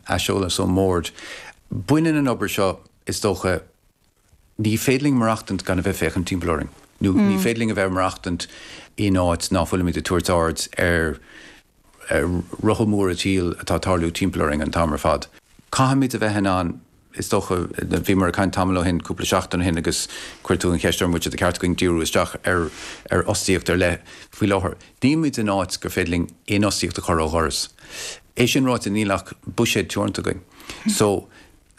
Aiseolas ón mBord. Baineann an obair seo, is dócha, ní féidir linn maireachtaint gan a bheith ag féachaint timpeall orainn, nó ní féidir linn a bheith ag maireachtaint in áit ná fuilimid ag tabhairt aird ar rotha móra an tsaoil atá ag tarlú timpeall orainn an t-am ar fad. Caithfimid a bheith in ann Is dócha, bhíomar ag caint tamall ó shin, cúpla seachtain ó shin, agus chuir tú an cheist orm, b'fhéidir ba cheart againn díriú isteach ar fhostaíocht ar leith faoi láthair. Níl muid in áit gur féidir linn aon fhostaíocht a chur ó dhoras. É sin ráite, níl ach buiséad teoranta againn. So,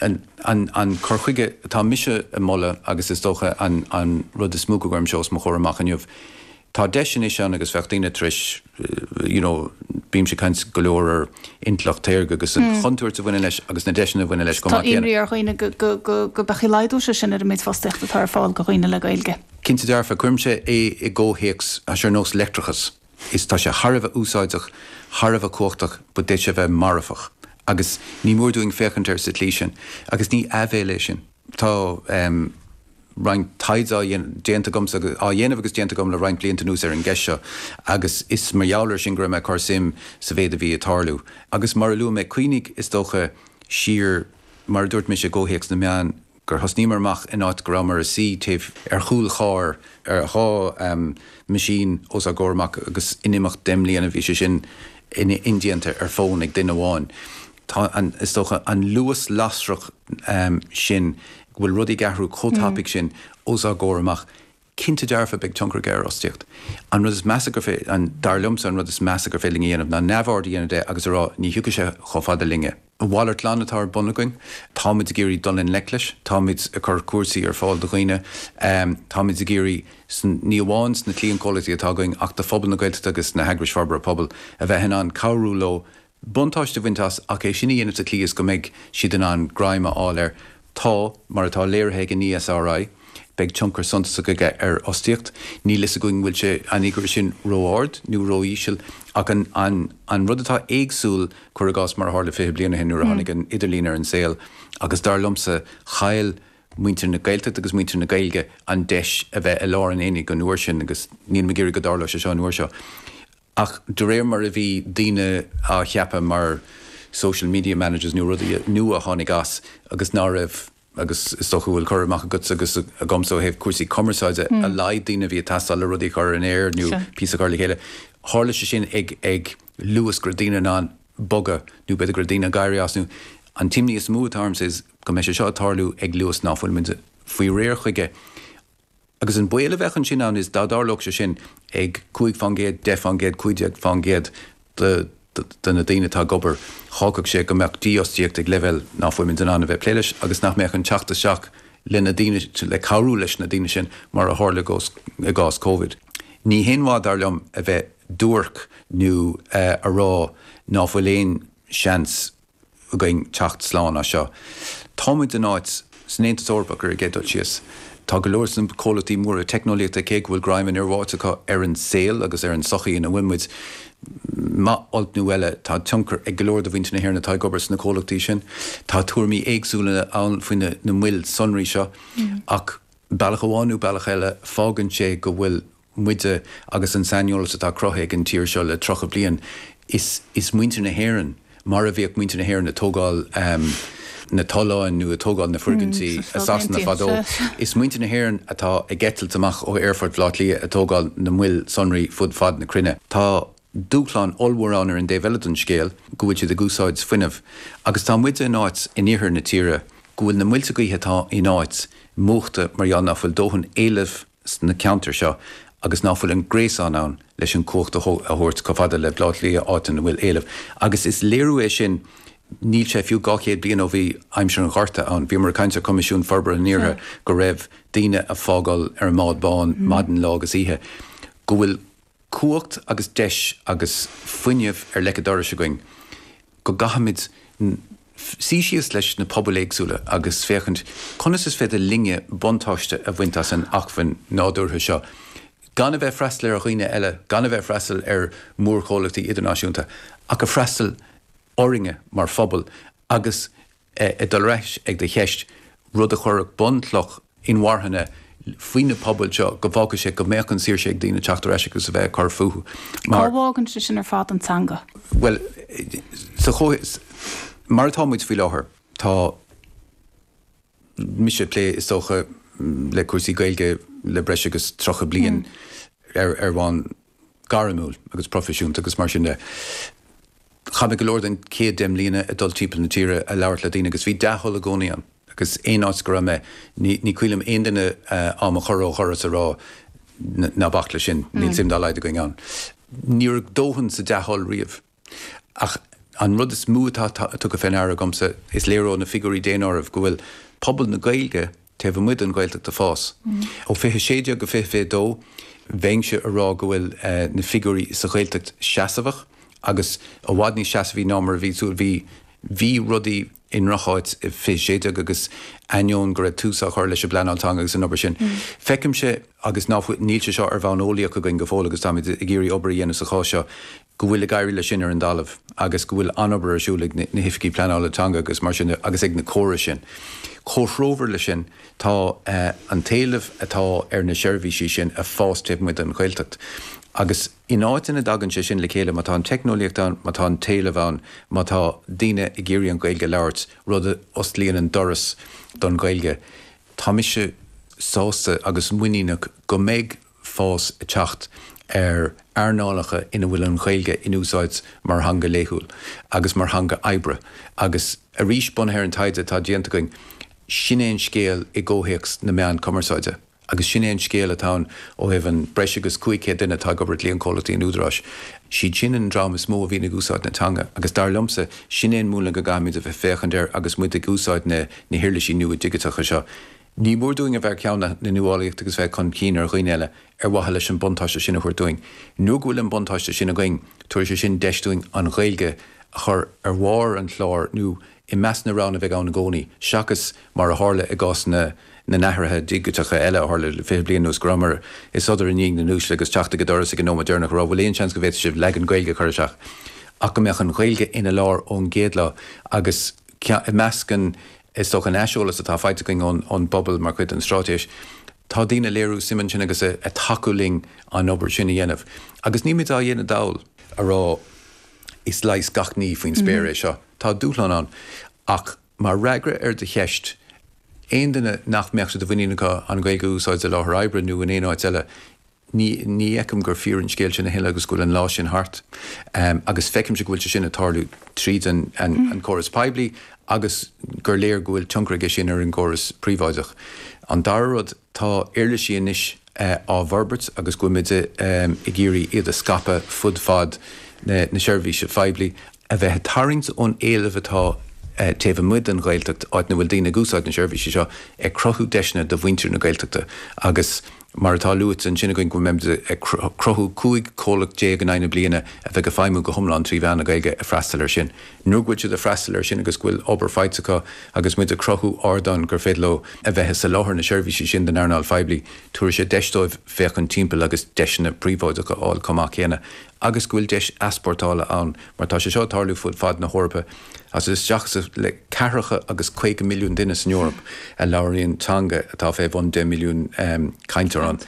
an cur chuige atá mise ag moladh, agus is dócha an rud is mó go gcuirimse os mo chomhair amach inniu, tá deis anois ann agus féachtar tar éis you know bímse ag caint go leor ar intleacht shaorga agus an chontúirt a bhaineann leis agus na deiseanna a bhaineann leis chomh maith céanna. Tá imní ar dhaoine go go go go laghdóidh sé sin ar an méid fostaíochta atá ar fáil go dhaoine le Gaeilge. Cinnte dearfa, cuirimse é i gcomhthéacs ais ar nós leictreachas is tá sé thar a bheith úsáideach, thar a bheith cumhachtach but d'fhéadfadh sé a bheith marfach agus ní mór dúinn féachaint air sa tslí sin agus ní aibhéil é sin. Tá. roinnt taighde á dhéanamh, déanta agam, á dhéanamh agus déanta agam le roinnt blianta anuas ar an gceist seo agus is mar gheall air sin go raibh mé ag cur suim sa mhéid a bhí ag tarlú. Agus mar a luaigh mé, cuimhnigh, is dócha, siar, mar a dúirt mise, i gcomhthéacs na meán, gur thosnaíomar amach in áit go rabhamar ag suí taobh ar chúl chairr ar dhá mheaisín os ár gcomhair amach agus in imeacht deich mbliana bhí sé sin indéanta ar fón ag duine amháin. Tá an, is dócha, an luas lasrach sin, go bhfuil rudaí ag athrú chomh tapaidh sin os ár gcomhair amach, cinnte dearfa beidh tionchar aige ar fhostaíocht. An rud is measa gur féidir, an, dar liomsa, an rud is measa gur féidir linn a dhéanamh ná neamhaird a dhéanamh de agus a rá ní thiocfaidh sé chomh fada linne. A mhalairt glan atá ar bun againn. Táimid ag iarraidh dul i ngleic leis, táimid ag cur cúrsaí ar fáil do dhaoine, táimid ag iarraidh, ní amháin sna cliantchomhlachtaí atá againn ach do phobal na Gaeltachta agus na heagrais forbartha pobail, a bheith in ann cabhrú leo buntáiste a bhaint as ach é sin a dhéanamh sa tslí is go mbeidh siad in ann greim a fháil air. Tá, mar atá léirithe ag an ESRI, beidh tionchar suntasach aige ar fhostaíocht. Níl a fhios againn an bhfuil sé, an figiúr sin, ró-ard nó ró-íseal ach an an rud atá éagsúil, cuir i gcás, mar a tharla 20 bliain ó shin nuair a tháinig an t-idirlíon ar an saol agus dar liomsa chaill muintir na Gaeltachta agus muintir na Gaeilge an deis a bheith i lár an aonaigh an uair sin agus nílim ag iarraidh go dtarlóidh sé seo an uair seo. Ach de réir mar a bhí daoine á cheapadh mar social media managers nó rudaí nua a tháinig as agus ná raibh, agus is dócha go bhfuil cur amach agatsa agus agamsa ó thaobh cúrsaí cumarsáide, a laghad daoine a bhí ag teastáil le rudaí a chur ar an aer nó píosa a chur le chéile, tharla sé sin ag luas go raibh daoine in ann bogadh nó b'fhéidir go raibh daoine ag éirí as nó. An imní is mó atá ormsa ná go mbeidh sé seo ag tarlú ag luas ná fuil muid faoi réir chuige Agus an baol a bheadh ansin ann is dá dtarlódh sé sin ag cúig fán gcéad, deich fán gcéad, cúig déag fán gcéad de na daoine atá ag obair, fhágfadh sé go mbeadh dífhostaíocht ag leibhéal ná fuimid in ann a bheith ag plé leis agus nach mbeadh an teacht isteach le na daoine, le cabhrú leis na daoine sin mar a tharla i gcás Covid. Ní haon mhaith dar liom a bheith duairc nó a rá ná fuil aon seans. againn teacht slán as seo. Táimid in áit. san Aontas Eorpach, ar an gcéad dul síos. Tá go leor sna comhlachtaí móra teicneolaíochta, cé go bhfuil greim an fhir bháite acu ar an saol agus ar an tsochaí ina bhfuil muid, maith olc nó eile, tá tionchar ag go leor de mhuintir na hÉireann atá ag obair sna comhlachtaí sin. Tá tuairimí éagsúla ann faoi na moil sonraí seo, ach bealach amháin nó bealach eile, fágann sé go bhfuil. muide agus an saineolas atá cruthaithe ag an tír seo le tríocha bliain, is muintir na hÉireann, mar a bhíodh muintir na hÉireann ag tógáil na tolláin nó ag tógáil na foirgintí i Sasana fadó, is muintir na hÉireann atá ag eitilt amach ó aerfort Bhaile Átha Cliath ag tógáil na moil sonraí fud fad na cruinne. Tá dúshlán ollmhór ann ar an dtaobh eile den scéal, go bhfuil siad ag úsáid fuinnimh, agus tá muide in áit in iarthar na tíre go bhfuil na muilte gaoithe atá in áit múchta mar gheall nach bhfuil dóthain éilimh, sna ceantair seo agus nach bhfuil an gréasán ann leis an chumhacht a thabhairt chomh fada le Baile Átha Cliath áit ina bhfuil éileamh. Agus is léiriú é sin, níl sé fiú 200 bliain ó bhí aimsir an Ghorta ann, bhíomar ag caint ar Choimisiún Forbartha an Iarthair go raibh daoine ag fágáil ar an mbád bán maidin lá agus oíche, go bhfuil. cumhacht agus deis agus fuinneamh ar leic a' dorais againn go gcaithfimid suí síos leis na pobail éagsúla agus féachaint conas is féidir linne buntáiste a bhaint as an acmhainn nádúrtha seo gan a bheith ag freastal ar dhaoine eile, gan a bheith ag freastal ar mhórchomhlachtaí idirnáisiúnta ach ag freastal orainne mar phobal agus ag dul ar ais ag do cheist, rud a chuirfeadh bunchloch inmharthana faoi na pobail seo, go bhfágfadh sé go mbeadh an saoirse ag daoine teacht ar ais agus a bheith ag cur fúthu. Cá bhfágann sé sin ar fad an teanga? Bhuel, sa chomhthéacs mar atá muid faoi láthair, tá mise ag plé is dócha le cúrsaí Gaeilge le breis agus 30 bliain ar bhonn gairmiúil agus proifisiúnta agus mar sin de. Chaith mé go leor den chéad deich mbliana ag dul timpeall na tíre ag labhairt le daoine agus bhí dea-thoil i gcónaí ann agus aon áit go raibh mé ní cuimhin liom aon duine do mo chur ó dhoras ag rá ná bac leis sin, níl suim dá laghad againn ann. Ní raibh dóthain sa dea-thoil riamh. Ach an rud is mó atá tugtha fé ndeara agamsa, is léir ó na figiúirí daonáirimh go bhfuil pobal na Gaeilge taobh amuigh den Ghaeltacht ag fás. Ó 2016 go 2022, bheinnse a rá go bhfuil na figiúirí sa Ghaeltacht seasmhach agus i bhfad níos seasmhaí ná mar a bhí súil, bhí, bhí rudaí i ndrocháit i 2016 agus ainneoin go raibh tús á chur leis an bpleanáil teanga agus an obair sin. Feicimse agus ná fuil, níl sé seo ar bhonn eolaíoch againn go fóill agus táimid ag iarraidh obair a dhéanamh sa spás seo, go bhfuil ag éirí leis sin ar an dtalamh agus go bhfuil an-obair ar siúl ag na hOifigigh Pleanála Teanga agus mar sin agus ag na córais sin. Comhthreomhar leis sin, tá an t-éileamh atá ar na seirbhísí sin ag fás taobh amuigh den Ghaeltacht agus an áit ina dtagann sé sin le chéile, má tá an teicneolaíocht ann, má tá an t-éileamh ann, má tá daoine ag iarraidh an Ghaeilge a labhairt, rud a osclaíonn an doras don Ghaeilge, tá mise sásta agus muiníneach go mbeidh fás ag teacht ar earnálacha ina bhfuil an Ghaeilge in úsáid mar theanga laethúil agus mar theanga oibre agus arís bunaithe ar an taighde atá déanta againn, sin é an scéal i gcomhthéacs na meán cumarsáide agus sin é an scéal atá ann ó thaobh an breis agus 500 duine atá ag obair i gcliantchomhlachtaí an Údaráis. Siad sin an dream is mó a bhíonn ag úsáid na teanga agus dar liomsa, sin é an múnla go gcaithfimid a bheith ag féachaint air agus muid ag úsáid na na huirlisí nua digiteacha seo. Ní mór dúinn a bheith ar thonn na nuálaíochta agus bheith chun cinn ar dhaoine eile ar mhaithe leis an buntáiste sin a thabhairt dúinn. Nuair go bhfuil an buntáiste sin againn, tabharfaidh sé sin deis dúinn an Ghaeilge a chur ar bharr an chláir nó i measc na roghanna a bheidh ann i gcónaí, seachas mar a tharla i gcás na n-athruithe digiteacha eile a tharla le fiche bliain anuas go rabhamar ag sodar i ndiaidh na n-uaisle agus ag teacht ag an doras ag an nóiméad deireanach a rá bhfuil aon seans go bhféadfadh sibh leagan Gaeilge a chur isteach ach go mbeadh an Ghaeilge ina lár ón gcéad lá agus ceann, i measc an, is dócha, an aiseolas atá faighte againn ón, ón bpobal mar chuid den Stráitéis, tá daoine ag léiriú suim ann sin agus ag, ag tacú linn an obair sin a dhéanamh. Agus nílmid á dhéanamh dall ag rá, is leigheas gach ní faoin spéir é seo. Tá dúshláin ann. Ach mar fhreagra ar do cheist, aon duine nach mbeadh sé de mhuinín acu an Ghaeilge a úsáid i láthair oibre nó in aon áit eile, Ní, ní fheicim gur fíor an scéal sin a thuilleadh agus go bhfuil an lá sin thart. Agus feicimse go bhfuil sé sin ag tarlú tríd an, an, an córas poiblí agus gur léir go bhfuil tionchar aige sin ar an gcóras príobháideach. An dara rud, tá uirlisí anois á bhforbairt agus go bhfuilimid ag iarraidh iad a scaipeadh fud fad na, na seirbhíse phoiblí a bheith ag tarraingt ón éileamh atá taobh amuigh den Ghaeltacht, áit ina bhfuil daoine ag úsáid na seirbhísí seo, ag cruthú deiseanna do mhuintir na Gaeltachta agus, mar atá luaite ansin againn, go mbeimid ag cruthú 15 comhlacht in aghaidh na bliana a bheidh ag feidhmiú go hiomlán trí mheán na Gaeilge ag freastal air sin. Nuair go bhfuil siad ag freastal air sin agus go bhfuil obair faighte acu agus muid ag cruthú ardán gur féidir leo a bheith ag soláthar na seirbhísí sin don earnáil phoiblí, tabharfaidh sé deis dóibh féachaint timpeall agus deiseanna príobháideacha a fháil chomh maith céanna. agus go bhfuil deis easpórtála ann mar tá sé seo ag tarlú fud fad na hEorpa agus isteach le ceathracha agus caoga milliún duine san Eoraip a labhraíonn teanga atá fé bhun deich milliún cainteoir.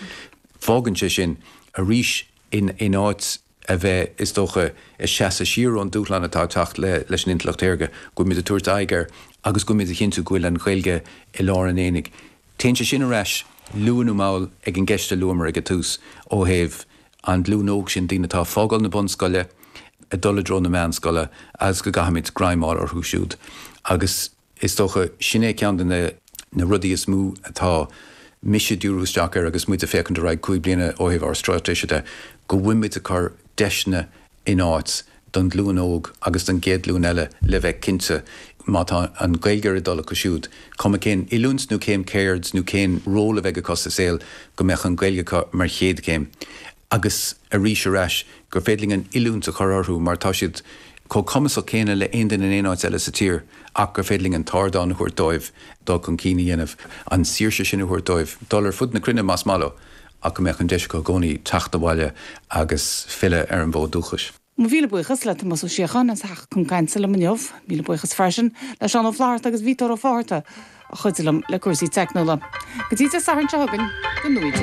Fágann sé sin arís in áit a bheith is dócha ag seasamh siar ón dúshlán atá ag teacht leis an intleacht shaorga, go bhfuilimid ag tabhairt aghaidh air agus go bhfuilimid ag cinntiú go bhfuil an Ghaeilge i lár an aonaigh. Téann sé sin ar ais luath nó mall ar an gceist a luamar ag an tús ó thaobh an ghlúin óg sin daoine atá ag fágáil na bunscoile ag dul i dtreo na meánscoile agus go gcaithfimid greim a fháil orthu siúd agus is dócha sin é ceann de na na rudaí is mó atá mise ag díriú isteach air agus muid ag féachaint ar aghaidh cúig bliana ó thaobh ár stráitéise de go bhfuilimid ag cur deiseanna in áit don ghlúin óg agus don gcéad ghlúin eile le bheith cinnte má tá an Ghaeilge ar a dtoil acu siúd, cuma cén oiliúint nó cén ceird nó cén ról a bheidh acu sa saol, go mbeidh an Ghaeilge acu mar chéad chéim. Agus arís ar ais, gur féidir linn an oiliúint a chur orthu mar tá siad chomh cumasach céanna le haon duine in aon áit eile sa tír ach gur féidir linn an t-ardán a thabhairt dóibh dul chun cinn a dhéanamh, an tsaoirse sin a thabhairt dóibh dul ar fud na cruinne más maith leo. ach go mbeidh an deis acu i gcónaí teacht abhaile agus filleadh ar an bhfód dúchais. Míle buíochas le Tomás Ó Síocháin as a theacht chun cainte liom inniu. Míle buíochas freisin le Seán Ó Flaithearta agus Peter Ó Fátharta a chuidigh liom le cúrsaí teicniúla. Go dtí Dé Sathairn seo chugainn, go ngnóthaí Dia.